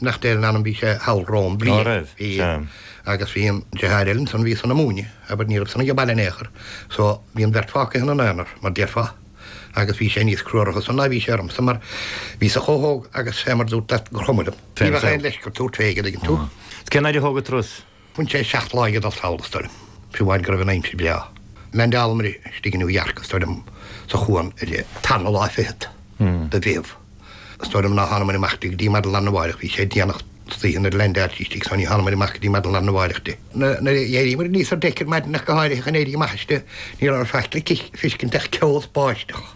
nach deir an ainm bhí sé thall romham bliain. Go raibh, sea. Agus bhí an deartháir eile ansan bhí san ag múineadh abair ní raibh san aige baile in aon chor so bhí an bheirt fágtha ina n-aonar mar déarfá agus bhí sé níos crua orthu san ná bhí sé ormsa mar bhíos-sa chomh hóg agus fé mar dúrt leat gur chuma liom. Ní bheadh aon leisce ort tabhairt fé, an dtuigeann tú. Is cén fhaid a thóg an turas? Bhain sé seacht lá ag dul sall is dóigh liom, fiú amháin go raibh an aimsir breá. Landálamair istigh i New York is dóigh liom sa chuan ar an tarna lá fichead de Mheitheamh, is dóigh liom ná thánamair amach di go dtí maidin larnamháireach. Bhí sé déanach istoíche nuair a landáil sí istigh so ní thánamair amach go dtí maidin larnamháireach di. Nuair a d'éiríomair aníos ar deic ar maidin ach go háirithe chun éirí amach aisti, ní raibh faic le fiscint ach ceo is báisteach.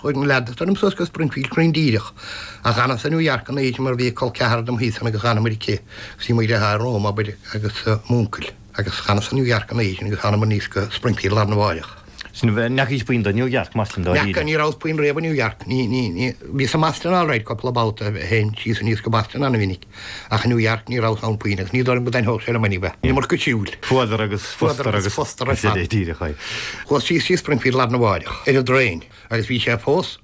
Chuaigh ar leanais ort suas go Springfield cruinn díreach, a dh'fhanas in New York an oíche mar bhí col ceathar dom thíos ann agus dh'fhanamair aici agus bhí mo dheartháir romham, abair, agus m'úncail. Agus d'fhanas in New York an oíche agus thánamair aníos go Springfield larnamháireach. So ní fheacaís puinn do New York, mar sin, dáiríre. Ní fheaca, ní rabhas puinn riamh in New York. Ní, ní, ní, bhíos i mBoston alright cupla babhta, théinn síos aníos go Boston ana-mhinic. Ach i New York ní rabhas ann puinn in aon chor. Ní dóigh liom go dtaitneodh sé liom bheith ann, iomarca siúil. Fuadar agus fústar agus fústar ar fad. díreach é. Chuas síos go dtí Springfield larnamháireach ar an dtraein agus bhí sé fós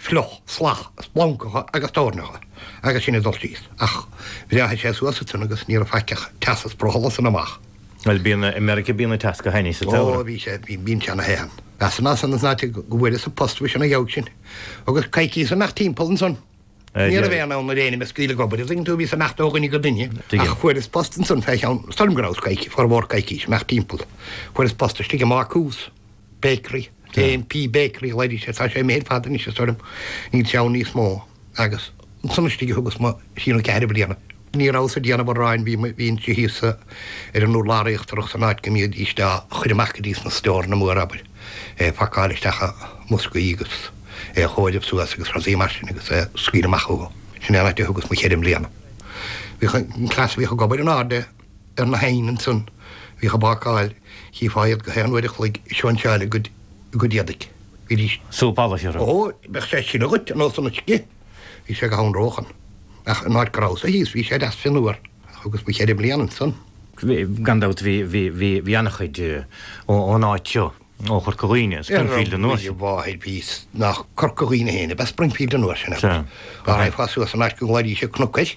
fliuch, salach, splancacha agus toirneacha agus sin ag dul síos. Ach bhreáthaigh sé suas sa tráthnóna agus ní raibh faic ach teas is brothall ansan amach. Bhuel, bíonn i Meiriceá bíonn an teas ina thine sa tsamhradh. Ó, bhí sé, bhí, bíonn sé ina thine. Bhíos-sa ansan is ná te go bhfuaireas an post bhíos ina dhiaidh sin agus coicíos ag imeacht timpeall ansan. Ní raibh aon fhonn ar éinne mé a scaoileadh ag obair. An dtuigeann tú, bhíos ag imeacht ó dhuine go duine ach fuaireas post ansan fé cheann is dóigh liom go rabhas coic, formhór coicís ag imeacht timpeall. Fuaireas post istigh i mbácús, bakery, JMP Bakery a ghlaoidís air, tá sé imithe ar fad anois is dóigh liom, níl sé ann níos mó agus ansan istigh a thugas mo thrí nó ceathair bliana. Ní rabhas ag déanamh aráin, bhínnse thíos ar an urlár íochtarach san áit go mbídís á chur amach go dtí sna stóranna móra abair, é a phacáil isteach i mboscaí agus é a chomhaireamh suas agus rudaí mar sin agus é a scaoileadh amach chucu. Sin é an áit a thugas mo cheithre mbliana. Bhíodh an cleas a bhíodh ag obair in airde ar na hoighin ansan, a bhíodh ag bácáil, chífeá iad gach aon uair a chloig ag sóinseáil a gcuid éadaigh. Bhídís. Súp allais, thiar. Ó, bheadh sé ag sileadh dhíot ar nós an uisce! Bhí sé go hanróch ann. Ach in áit go rabhas-sa thíos bhí sé deas fionnuar. Ach thugas mo cheithre bliana ansan. Gan dabht bhí ana-chuid ón áit seo, ó Chorca Dhuibhne, Springfield an uair sin. Ar mo mháthair bhí nach Corca Dhuibhne féin ab ea Springfield an uair sin agus dá raghfá suas an áit go nglaoidís air Cnoc an Ocrais,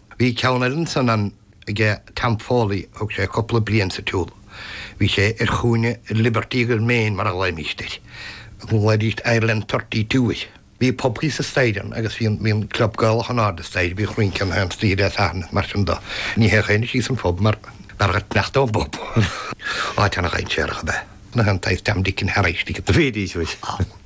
Bhí ceann eile ansan, an, aige Tom Foley, thug sé cúpla bliain sa tsiúl. Bhí sé ar chúinne Liberty agus Main mar a ghlaoimíst air. Ghlaoidíst Ireland Thirty Two air. Bhí pub thíos sa staighre ann agus bhí an, bhí an club Gaelach in airde sa staighre, bhíodh rinceanna ann istoíche Dé Sathairn is mar sin do. Ní théadh éinne síos sa phub mar, mar gur sneachta an pub. Áit ana-dhainséarach ab ea, nach raibh an saghas dream dickin thar éis tickets a bhí istigh ann.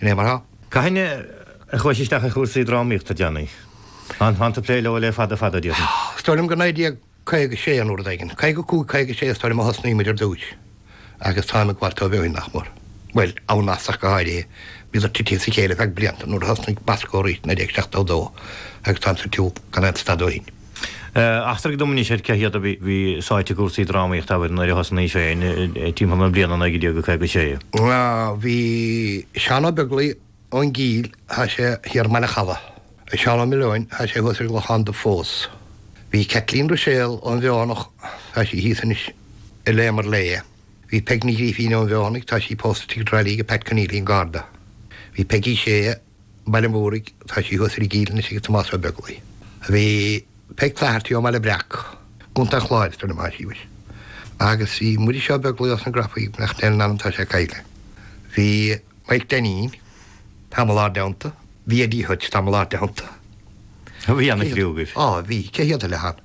Gné mar seo, cathain a chuais isteach i gcúrsaí drámaíochta déanaí? Táim ag plé leo le fada fada, déarfainn. Is dóigh liom go 1956 nó rud éigin. 55, 56 is dóigh liom a thosnaigh muid ar dtús agus táim ag gabháilt dóibh ó shin nach mór. Bhuel, on and off ach go háirithe, bhíodar titithe as a chéile feadh blianta nuair a thosnaigh Bosco arís i 1972 agus táim sa tsiúl gan aon stad ó shin. Eachtraigh dom anois ar cé hiad a bhí sáite i gcúrsaí drámaíochta aoibhinn nuair a thosnaís féin, timpeall na bliana 1956. Bhí Seán Ó Beaglaoi ón gCill, tá sé thiar i mBaile an Chalaidh. Bhí Seán Ó Maoileoin, tá sé thuas ar an gClochán Dubh fós. Bhí Caitlín Ruiséal ón bhFeothanaigh, tá sí thíos anois i Léim Fhir Léith. Bhí Peig Ní Ghrífín ón bhFeothanaigh, tá sí pósta i dTrá Lí ag Pat Conneely an Garda. Bhí Peigí Shea. Baile an Mhúraigh, tá sí thuas ar an gCill anois ag Tomás Ó Beaglaoi. Bhí Peig Flaherty ón mBaile Breac i gContae an Chláir atá ina máistreás. Agus bhí Muiris Ó Beaglaoi ós na Grafaí, beannacht Dé lena anam, tá sé caillte. Bhí Maidhc Dainín tamall inár dteannta. Bhí Eddie Hutch tamall inár dteannta. Bhí ana chriú agaibh. Á, bhí. Cé hiad a leath?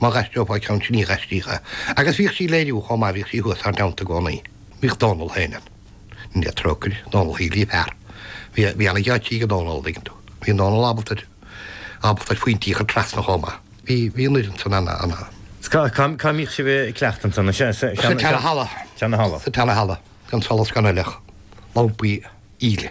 Má dh'aistreofá ceann sin ní dh'aistríthá. Agus bhíodh sí ag léiriú chomh maith, bhíodh sí thuas inár dteannta i gcónaí. Bhíodh Dónall féin ann. Go ndéana Dia trócaire air. Dónall Shíghlí a fear. Bhí, bhí an-gheáitsí ag an Dónall, an dtuigeann tú. Bhí an Dónall ábalta, ábalta ar phointí a chur trasna chomh maith. Bhí, bhí an fhoireann san ana, ana. Cá, cá, cá mbíodh sibh a' cleachtadh ansan? Is ea, sa, sa, sa, sa tseana halla. Tseana halla. Sa tseana halla. Gan solas gan eile ach lampaí íle.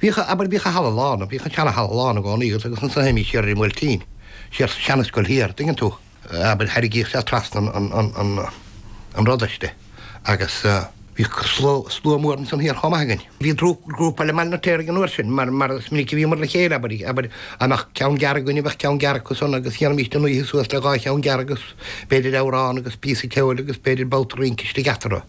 Bhíodh a abair bhíodh an halla lán, bhíodh an seana halla lán i gcónaí agus ansan a théimís siar ar an mBuailtín, siar sa seana scoil thiar, dtuigeann tú, a abair thairgíodh sé trasna an pharóiste agus bhí slua mór ansan thiar chomh maith againn. Bhí grúpa leis i mBaile an Fheirtéaraigh an uair sin mar is minic a bhíomar le chéile, abair, a abair go mbeadh ceann gearr againn, a bheadh ceann gearr acu san agus dhéanfaimís an oíche suas le dhá cheann gearr agus b'fhéidir amhrán agus píosa ceoil agus b'fhéidir babhta rince istigh eatarthu.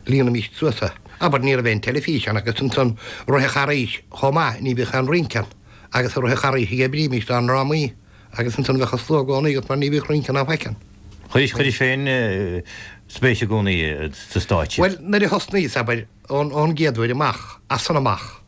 Líonaimis suas é. Abair ní raibh aon teilifís ann agus ansan i rith an Charghais chomh maith, ní bhíodh aon rince ann agus i rith an Charghais a dh'oibrímís dár ndrámaí agus ansan bheadh an slua i gcónaí agat mar ní bhíodh rince ann, an bhfeiceann. Chuiris, chuiris féin spéis i gcónaí sa stáitse. Bhuel, nuair a thosnaíos, abair, ón gcéad uair amach, as san amach.